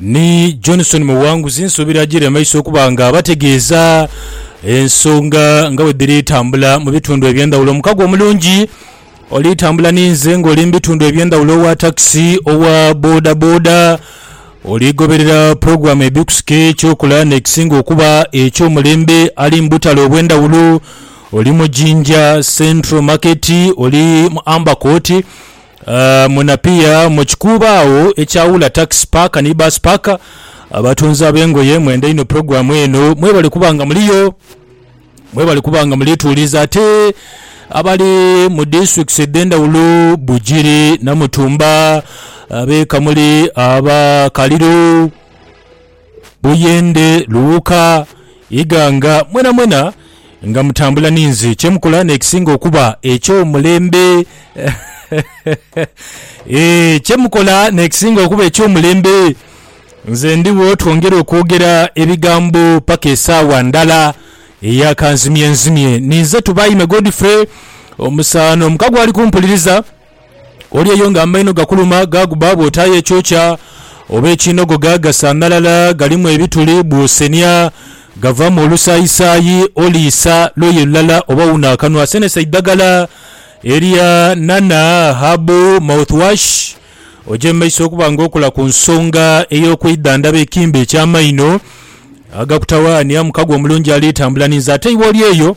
Ni Johnson Muwanguzi nsuubira ajiire mu maiso okuba nga abategeeza ensonga nga bwedhiri tambula mu bitundu eby'endhawulo. Omukago omulungi oli tambula ni nze nga oli mu bitundu eby'endhawulo owa takisi, owa boda boda, oli goberera pulogulaamu ebikusika eky'okola n'ekisinga okuba eky'omulembe ali mu butale obw'endhawulo. Oli mu Jinja Central Market, oli mu Amber Court, Mu Napier, mu kikuubo agho ekyawula takisi paaka ni baasi paaka, abatunzi ab'engoye mwenda inho pulogulaamu eno. Mwebale kuba nga muliyo, mwebale kuba nga mulituuliza. Ate abali mu disitulikiti edh'endhawulo, Bugiri, Namutumba, ab'e Kamuli, aba Kaliro, Buyende, Luuka, Iganga, mwenamwena nga mutambula ninze. Kye mukola n'ekisinga okuba eky'omulembe. Eeh, kye mukola n'ekisinga okuba eky'omulembe. Nze ndigho twongere okwogera ebigambo paka esaawa ndala eya kanzimyenzimye. Ninze Tubaime Godfrey, omusaano omuka gwali kumpuliriza. Oli eyo nga amaino gakuluma gaaguba bw'otaayo ekyokya oba ekiinogoga, gasanhalala, galimu ebituli, bw'osenia gavaamu olusaayisaayi. Oliisa luuyi lulala oba wuna akanwa. Senesa eidhagala erya Nana Habu Mouthwash oje mu maiso okuba nga okola ku nsonga ey'okwidhandhaba ekimbe eky'amaino agakutawaanya. Mukago omulungi ali tambula ninze ate iwe oli eyo.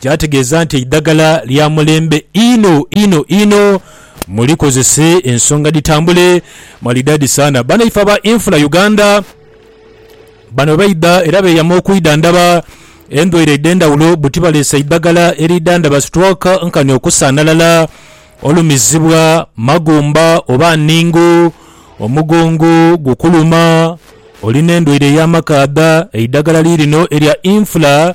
kyategeeza nti eidhagala lya mulembe inho inho inho mulikozese ensonga dhitambule maridadi sana banaife aba Infra Uganda bano bwebaidha era beyama okwidhandhaba endwaire edhendhawulo buti baleese eidhagala eridhandhaba stroke nkani okusanhalala olumizibwa magumba oba nningu omugongo gukuluma olina endwaire eyamakaadha eidhagala lirino erya Infra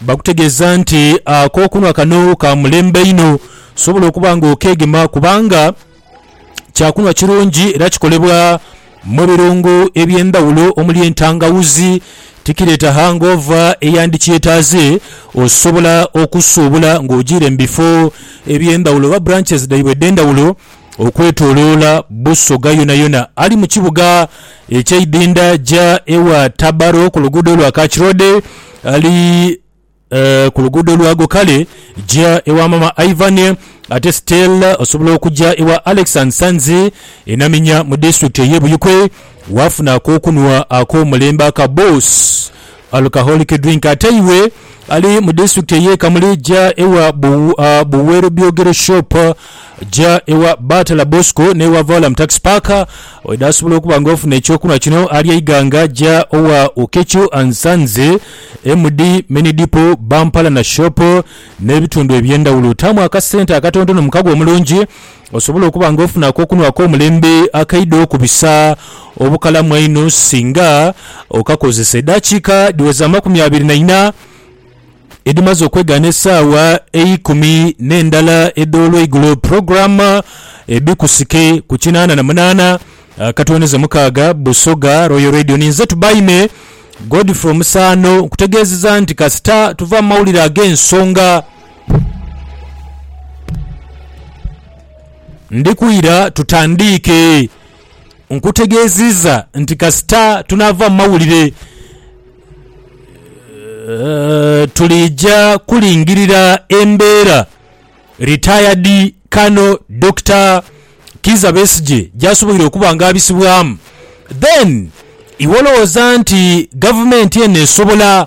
Bakutegeeza nti ak'okunhwa kano ka mulembe inho, osobola okuba nga okeegema kubanga kyakunhwa kirungi era kikolebwa mu birungo eby'endhaghulo omuli entangawuzi, tikireeta hangoova eyandikyetaaze, osobola okusuubula ng'ogiire mu bifo eby'endhaghulo oba branches dhaibwe edh'endhaghulo. okwetoloola Busoga yonayona. Ali mu kibuga ekyeidhindha ja ewa Tabaro ku luguudo lwa Kach Road ali ku luguudo lwago kale ja ewa maama Ivan ate still osobola okuja ewa Alex and Sons e Naminya mu district eye Buikwe wafuna akokunwa akomulembe aka Boss Alcoholic drink Ate iwe ali mu disitulikiti ey'e Kamuli ja ewa Buweerobyogero Shop, ja ewa Batala Bosco n'ewa Vaulam Taxi Park. Oidha asobola okuba nga ofuna eky'okunhwa kino ali eighanga ja owa Okecho and Sons, MD Mini Depot, Bampalana Shop n'ebitundu eby'endhawulo. Taamu akasente akatontono mu kago omulungi Osobola okuba nga ofuna akokunhwa ak'omulembe akaidho ku bisa obukalamu einho singa okakozesa. Edaakiika dhiweza amakumi abiri na ina edhimaze okwegaana esaawa eikumi n'endala edh'olweigulo, pulogulaamu ebikusike ku kinaana na munaana akatwoneza mukaaga, Busoga Royal Radio. Ni nze Tubaime Godfrey Omusaano nkutegeezeza nti kasita tuva mu mawulire ag'ensonga, Ndi kwira tutandiike. Nkutegeeziiza nti kasita tunaava mu mawulire tuliija kulingirira embeera Ritayadi Kano Dokita Kiiza Besigye gy'asoboire okuba nga abisibwamu. Then iwe olowooza nti Gavumenti eno esobola?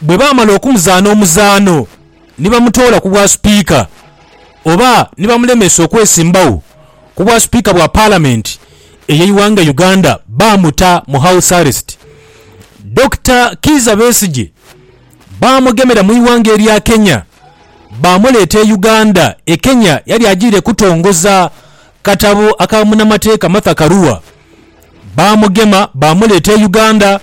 Bwe baamala okumuzaana omuzaano ni bamutoola ku bwasupiika oba ni bamulemesa okwesimbagho ku bwasupiika bwa Palamenti ey'eighanga Uganda baamuta mu House Arrest. Dokita Kiiza Besigye baamugemera mu ighanga erya Kenya baamuleeta e Uganda. E Kenya yali ajiire kutongoza katabo aka munamateeka Martha Karua Baamugema baamuleeta e Uganda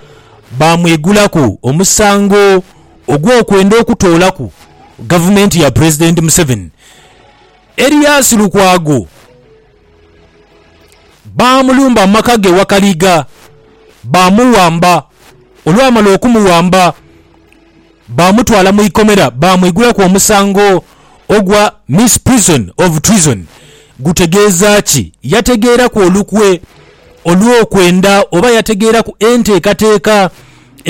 baamwigulaku omusango ogw'okwenda okutoolaku gavumenti ya Pulezidenti Museveni. Erias Lukwago baamulumba mu maka ge Wakaliga baamuwamba. Olwamala okumuwamba Baamutwala mu ikomera baamwigulaku omusango ogwa Misprision of Treason. Gutegeeza ki? Yategeeraku olukwe olw'okwenda oba yategeeraku enteekateeka